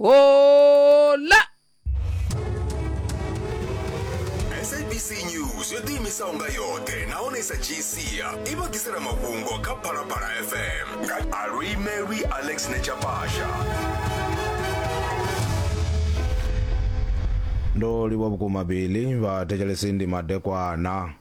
Hola! sabc news yo ḓiimisaho nga yoṱhe nahone i sa dzhii sia i vha ḓisela mafhungo kha phalaphala fm nga alwimelwi alex nechapasha ndo livha vhukuma bili vhathetshelesi ndi madekwana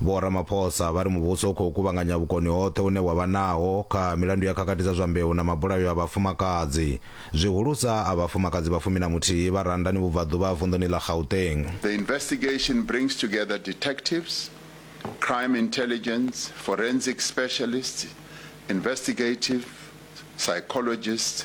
Vho Ramaphosa vha ri muvhuso u khou kuvhanganya vhukoni hoṱhe une wa vha naho kha milandu ya khakhathi dza zwa mbeu na mabulayo a vhafumakadzi, zwihulusa a vhafumakadzi vha fumi na muthihi vha Randani Vhubvaḓuvha ha vunḓuni ḽa Gauteng. The investigation brings together detectives, crime intelligence, forensic specialists, investigative psychologists,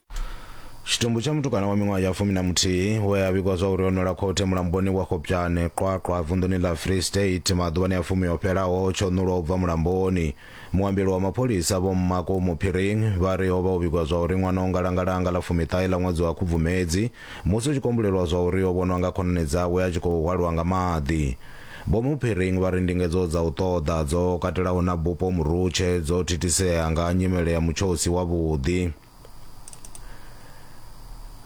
tshitumbu tsha mutukana wa miṅwaha ya fumi na muthihi we a vhigwa zwa uri o nwela khothe mulamboni wa khopjane qwaqwa vunḓuni ḽa free state maḓuvhani a fumi o fhelaho tsho nulwa u bva mulamboni muambeli wa mapholisa vho mmako muphiring vha ri o vha o vhigwa zwa uri ṅwana o ngalangalanga ḽa fumiṱahe ḽa ṅwedzi wa khubvumedzi musi u tshi kombulelwa zwa uri o vhonwa nga khonani dzawe a tshi khou hwalwa nga maḓi vho muphiring vha ri ndingedzo dza u ṱoḓa dzo katelaho na bupo murutshe dzo thithisea nga nyimele ya mutshosi wavhuḓi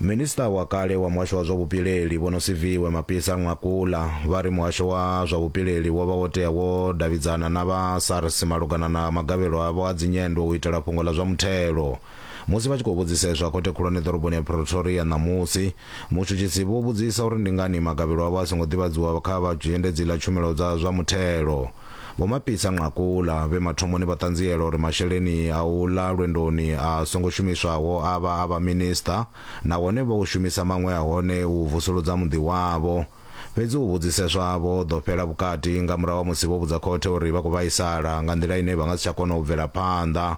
minista wa kale wa muhasho wa zwa vhupileli vho no siviwe mapisa ṅwakula vha ri muhasho wa zwa vhupileli wo vha wo tea wo davhidzana na vha sars malugana na magavhelo avho a dzinyendo u itela fhungo ḽa zwa muthelo musi vha tshi khou vhudziseswa khothe khulwane ḓoroboni ya pretoria ṋamusi mutshutshisi vho vhudzisa uri ndi ngani magavhelo avho a songo ḓivhadziwa kha vha zhendedzi ḽa tshumelo dza zwa muthelo Vho Mapisa Nqakula, vhe mathomoni vha ṱanziela uri masheleni a u ḽa lwendoni a songo shumiswaho a vha a vhaminisiṱa nahone vho shumisa maṅwe a hone u vusuludza muḓi wavho. Fhedzi u vhudziseswa havho ho ḓo fhela vhukati nga murahu ha musi vho vhudza khothe uri vha khou vhaisala nga nḓila ine vha nga si tsha kona u bvela phanḓa.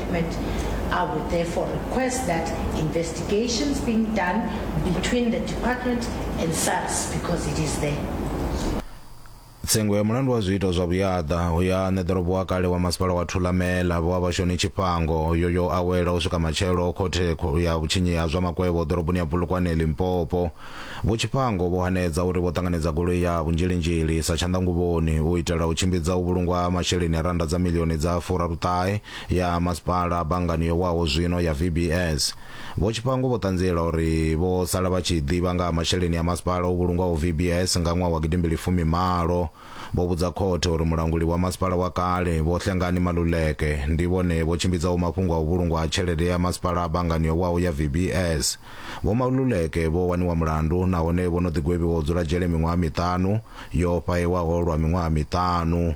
I would therefore request that investigations being done between the department and SARS because it is there. tsengo ya mulandu wa zwiito zwa vhuyaḓa hu ya ṋe ḓorobo wa kale wa masipala wa thulamela vho vhashoni tshifhango yo yo awela u swika matshelo khothe kho- ya vhutshinyi ha zwa makwevho ḓoroboni ya bulukwane limpopo vho tshifhango vho hanedza uri vho ṱanganedza goloi ya vhunzhilinzhili sa tshanḓanguvhoni u itela u tshimbidza u vhulungwa ha masheleni a randa dza milioni dza furaruṱahe ya masipala banngani yo waho zwino ya VBS. Vho Tshipango vho ṱanziela uri vho sala vha tshi ḓivha nga ha masheleni a masipala o vhulungwaho VBS nga ṅwaha wa gidimbili fumi malo. Vho vhudza khothe uri mulanguli wa masipala wa kale Vho Hlengani Maluleke ndi vhone vho tshimbidzaho mafhungo a u vhulungwa ha tshelede ya masipala banngani yo waho ya VBS. Vho Maluleke vho waniwa mulandu nahone vho no ḓi gwevhiwa u dzula dzhele miṅwaha miṱanu yo fhahewaho lwa miṅwaha miṱanu.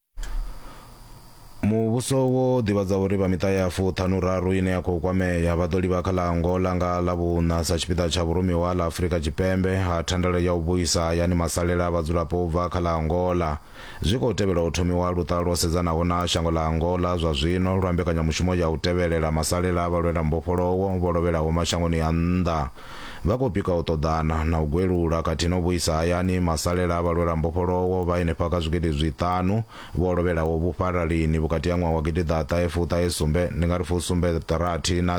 muvhuso wo ḓivhadza uri vha miṱa ya fuṱhanuraru ine ya khou kwamea vha ḓo livha kha ḽa angola nga ḽa vhuṋa sa tshipiḓa tsha vhurumiwa ha ḽa afurika tshipembe ha thandela ya u vhuisa hayani masalela a vhadzulapo u bva kha ḽa angola zwi khou tevhela u thomiwa luṱa lwo sedzanaho na shango ḽa angola zwa zwino lwa mbekanyamushumo ya u tevhelela masalela a vhalwela mbofholowo vho lovhelaho mashangoni a nnḓa Vha khou pika u ṱoḓana na u gwelula khathihi na u vhuisa hayani masalela a vhalwelambofholowo vha henefha kha zwigidi zwiṱanu vho lovhelaho vhufhalalini vhukati ha ṅwaha wa gidiḓaṱahe fuṱahe sumbe, ndi nga ri fusumbe rathi, na.